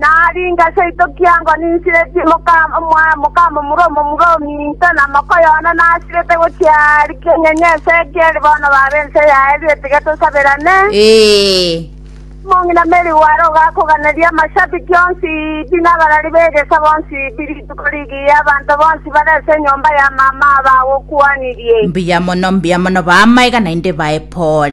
Naringa seito kiango ninsiretie mokamomura omomura o minto, na mokoyo one nasirete gochia aria keng'enye ense ekeri bono babe ense yaye ritige tosaberane. Omong'ina Mary Ware ogakoganeria amashabiki onsi pi nabarari b'egeso bonsi pi rituko rigiya abanto bonsi bare ase enyomba ya mama bagokwanirie. Mbuya mono, mbuya mono, baamaiga naende bae pore.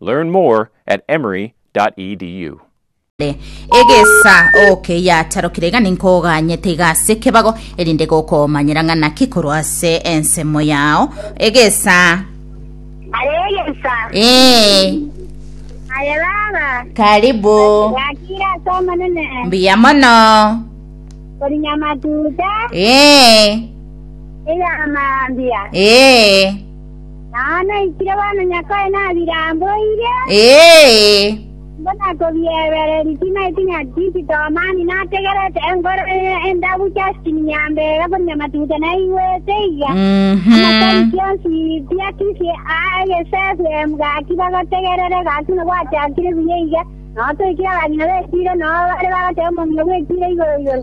Learn more at emory.edu. Egesa oke yatarokire iga ninkoganyete iga ase kebago erinde gokomanyera ng'a naki korwa ase ensemo yao egesa Are egesa. ee Are baba. karibu Yakira ase omonene. mbuya mono Korinya matuta. ee Eyamambia. ee Naye naikire bono Nyasae nabiramboire. Ee. Nigo nakobiebereri timaeti nyatichi tomani nategerete enkoro eye endabu Justin Nyambega korwa Nyamatuta naigwete iga amasari kionsi tiakisie aa egesesu em gaki bagotegerere gaki nobwachakire buya iga notoikire abagima betiire noo bare bagoteba omomio bwetiire igoro igoro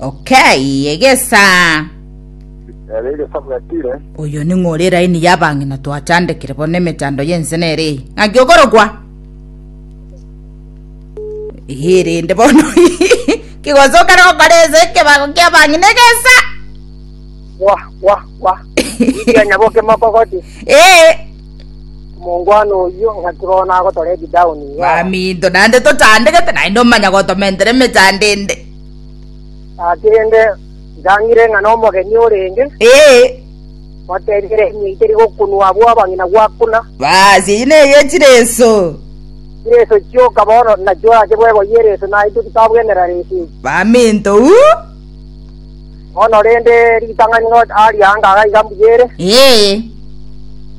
Okay, egesa. Ere egesa bwatire. Oyo ning'o ore eraini y'abang'ina twachandekire bono emechando y'ense nere eye? Ng'aki okorokwa? Ee, rende bono kigosokera gokora ense ekebago ki'abang'ina egesa. Wa, wa, wa. Iria nyaboke mokogoti. Ee, Omongwana oyio ng'aki bono nagotora ebidauni. Wa. baminto naende tochandegete naende omanya gotomentere emechando ende. Nakerende ngang'ire ng'a nomogeni orenge, Ee, ngotebiire imwe itari gokunwa abwo abang'ina gwakuna. baasi eyio neye chire enso. Chireso chioka bono nachi orache bweboyie ereso naintwe titabwenera reso eri. Baminto uu. Bono rende ritang'ani ngocha aria anga aga iga mbuya ere. Ee,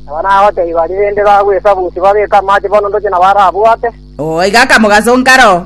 Aba nagotebi baria rende bagwesaba usi babeke amache bono ndoche nabarabwate. oo iga akamogaso nkaro.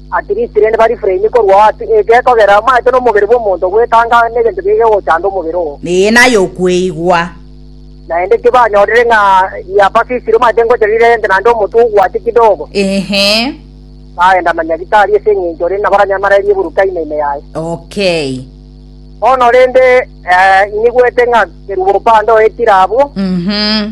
Atirisi rende barifure ime korwa ao ase eke, kogera amache nomobere bw'omonto ogwetanga negento geke gochanda omobere oo. Eye naye okweigwa. Naende tibanyorire ng'a yabafisire omache ngocha riria rente naende omotwe ogwache kidogo. Ehe. Bagenda na nyagitari ase eng'encho rende nabaranyamarerie boruka ime ime yaye. Okay. Bono rende, eh, inigwete ng'a kerubo opande oetire abwo. Mhm.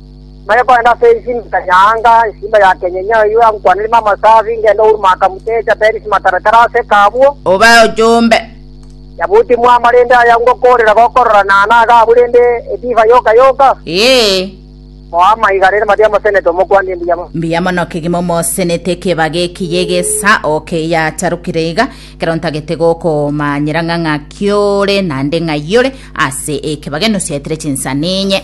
Nare korende ase enchili ya nyaanga, esimba ya kenyenye eyio yankwanire ime amasabi, ngende Uru Maakamutecha, Perisi Mataratara ase ekabwo. Obe ochombe. Yabuti mwama rende aya ngokoorera gokorora naana agaabu rende edivai yoka yoka? Ee. Mwama iga rende mati amosenete omokwanire mbuya mono. Mbuya mono kegima omosenete ekebaga eki y'egesa oke eyacharokire iga, ekero ntagete gokomanyera ng'a ng'aki ore, naende ng'ai ore, ase ekebaga enosi yaetire chinsani inye.